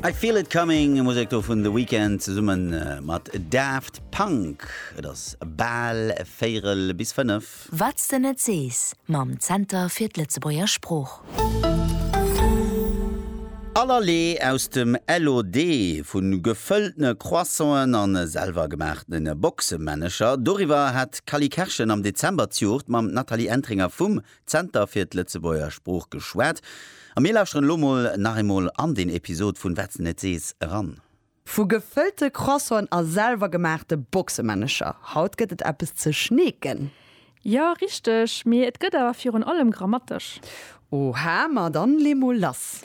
I Feel It Coming, Musek do vun The Weeknd zesumme mat Daft Punk. Et ass bal véierel bis fënnef. Wat s de net sees mam Zenter fir d'Lëtzebuerger Sprooch. Allerlee aus dem LOD, vu gefëlltene Croissanten a selwer gemaachtene Boxemännecher, doriwwer hat d'Cally Kerschen am Dezember d'Juegd mam Nathalie Entringer vum Zenter fir d'Lëtzebuerger Sprooch geschwat a mir lauschteren elo mol nach eemol an deen Episod vun Wat s de net sees eran. Vu gefëllte Croissanten a selwer gemaachte Boxemännecher, haut gëtt et eppes ze schneeken. Jo, richteg, mee et gëtt awer virun allem grammatesch. Oha, ma dann lee mol lass.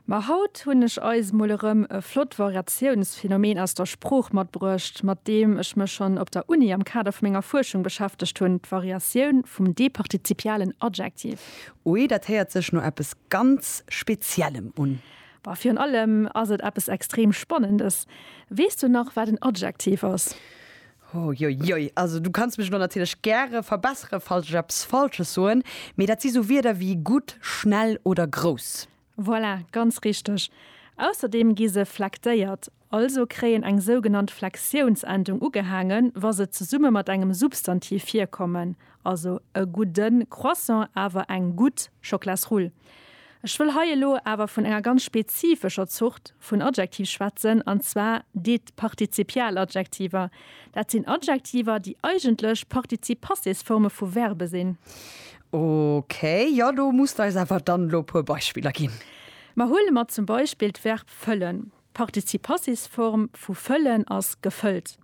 Ma haut hunn ech eis mol erëm e flott Variatiounsphänomen aus der Sprooch matbruecht, mat deem ech mech schonn op der Uni am Kader vu menger Fuerschung beschäftegt hunn, d'Variatioun vum departizipialen Adjektiv. Ui, dat héiert sech no eppes ganz Speziellem un. Bah, virun allem ass et eppes extrem Spannendes. Weess du nach, wat en Adjektiv ass? Uiuiui, also du kanns mech elo natierlech gäre verbessere falls ech eppes Falsches soen, mee dat si sou Wierder wéi gutt, schnell oder grouss. Voilà, ganz richteg. Ausserdeem gi se flektéiert, also kréien eng sougenannt Flexiounsendung ugehaangen, wa se zesumme mat engem Substantiv virkommen, Also e gudden Croissant, awer eng gutt Schoklasrull. Ech wëll hei elo awer vun enger ganz spezifescher Zort vun Adjektiv schwätzen, an zwar deet Partizipialadjektiver. Dat sinn Adjektiver, déi eigentlech Partizip-Passés-Forme vu Verbe sinn. Ok, jo, do muss de eis awer dann elo e puer Beispiller ginn. Ma huele mer zum Beispill d'Verb fëllen. D'Partizip-Passés-Form vu fëllen ass gefëllt.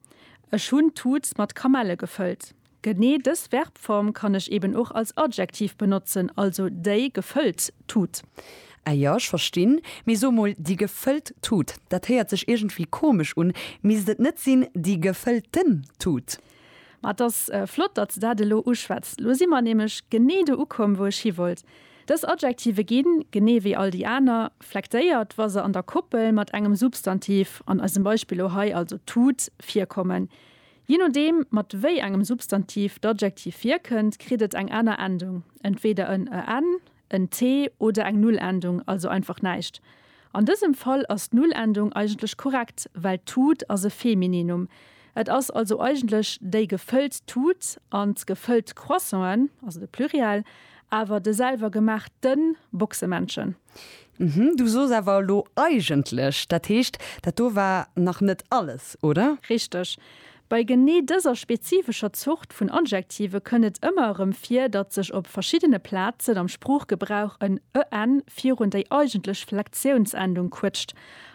Ech hunn d'Tut mat Kamelle gefëllt. Genee dës Verbform kann ech eben och als Adjektiv benotzen, also déi gefëllt Tut. Ah jo, ech verstinn. Mee so mol, déi gefëllt Tut, dat héiert sech iergendwéi komesch un. Misst et net sinn, déi gefëllten Tut? Ma et ass flott, datt s de dat elo uschwätz. Lo si mer nämlech genee do ukomm, wou ech hi wollt. Dës Adjektive ginn, genee wéi all déi aner, flektéiert, wa se an der Koppel mat engem Substantiv, an eisem Beispill elo hei also Tut, virkommen. Je nodeem, mat wéi engem Substantiv d'Adjektiv virkënnt, kritt et eng aner Endung, entweeder en en, en t oder eng Nullendung, also einfach näischt. An dësem Fall ass d'Nullendung eigentlech korrekt, well d'Tut ass e Femininum. Et ass also eigentlech déi gefëllt Tut an d'gefëllt Croissanten, also de Pluriel, awer de selwergemaachten Boxemännchen. Mhm, du soos awer elo eigentlech. Dat heescht, dat do war nach net alles, oder? Richteg. Bei genee dëser spezifescher Zort vun Adjektive kënn et ëmmer erëm vir, datt sech op verschiddene Plazen am Sproochgebrauch en en virun déi eigentlech Flektiounsendung quëtscht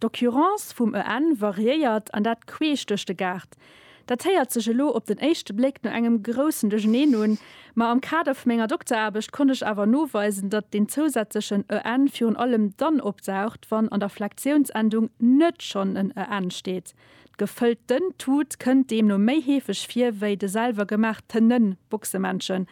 D'Occurrence vum EN variéiert, an dat queesch duerch de Gaart. Dat héiert sech elo op den éischte Bléck no engem groussen Duercherneen un, ma am Kader vu menger Dokteraarbecht konnt ech awer noweisen, datt deen zousätzlechen EN virun allem dann opdaucht, wann an der Flektiounsendung net schonn en EN steet. D'gefëllt ten Tut kënnt deemno méi heefeg vir wéi de selwer gemaach tenen Boxemännchen.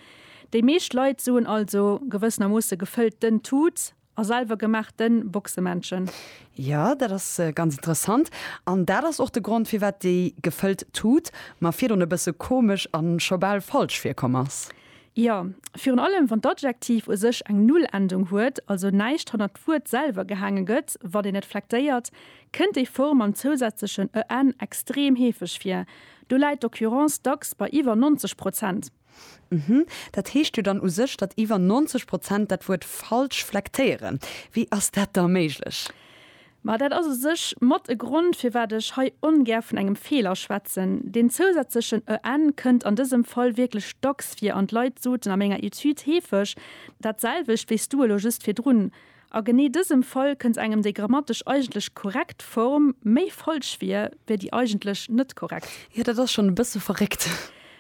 Déi meescht Leit soen also gewëssenermoosse gefëllt ten Tut A selwer gemaach den Boxemännchen. Jo, dat ass ganz interessant. An dat ass och de Grond firwat déi gefëllt Tut mer virdon e bësse komesch an scho bal falsch virkomm ass. Jo, virun allem wann d'Adjektiv u sech eng Null-Endung huet, also näischt hannert d'Wuert selwer gehaange gëtt, wann een et flektéiert, kënnt déi Form mam zousätzlechen en extrem heefeg vir. Do läit d'Occurrence dacks bei iwwer 90 Prozent. Uhmm. Dat heescht jo dann u sech, datt iwwer 90 Prozent dat Wuert falsch flektéieren. Wéi ass dat da méiglech? Ma dat ass u sech mat e Grond, firwat ech hei ongär vun engem Feeler schwätzen. Deen zousätzlechen en kënnt an dësem Fall wierklech dacks vir an d'Leit soten a menger Etüd heefeg dat selwecht wéi s du elo just virdrun. A genee dësem Fall kënnt engem déi grammatesch eigentlech korrekt Form méi falsch vir, wéi déi eigentlech net korrekt. Jo, dat ass schonn e bësse verréckt.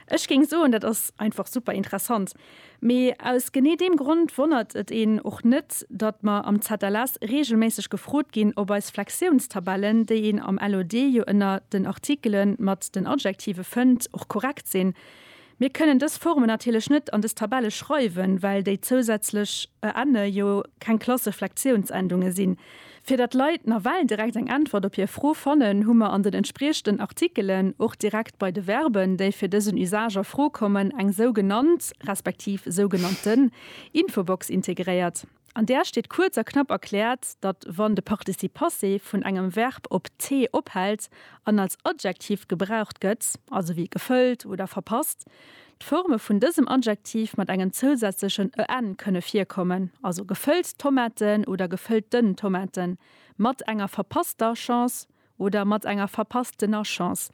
Ech géing soen, dat ass einfach super interessant. Mee aus genee deem Grond wonnert et een och net, datt mer am ZLS reegelméisseg gefrot ginn, ob eis Flexiounstabellen, déi een am LOD jo ënner den Artikele mat den Adjektive fënnt, och korrekt sinn. Mir kënnen dës Formen natierlech net an dës Tabelle schreiwen, well déi zousätzlech e enne jo keng Klasseflektiounsendunge sinn. Fir datt Leit nawell direkt eng Äntwert op hir Fro fannen, hu mer an den entspriechenden Artikelen, och direkt bei de Verben, déi fir dësen Usage a Fro kommen, eng sougenannt, respektiv sougenannten Infobox integréiert. An där steet kuerz a knapp erkläert, datt wann de Participe passé vun engem Verb op t ophält an als Adjektiv gebraucht gëtt, also wéi gefëllt oder verpasst, d'Forme vun dësem Adjektiv mat engem zousätzlechen en kënne virkommen, also gefëllt Tomaten oder gefëllt den Tomaten, mat enger verpasster Chance Oder mat enger verpasstener Chance.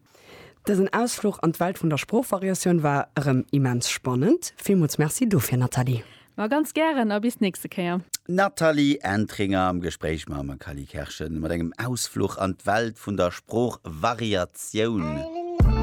Dësen Ausfluch an d'Welt vun der Sproochvariatioun war erëm immens spannend. Villmools Merci dofir, Nathalie! Ma ganz gären a bis d'nächste Kéier! D'Nathalie Entringer am Gespréich mam Cally Kerschen mat engem Ausfluch an d'Welt vun der Sproochvariatioun.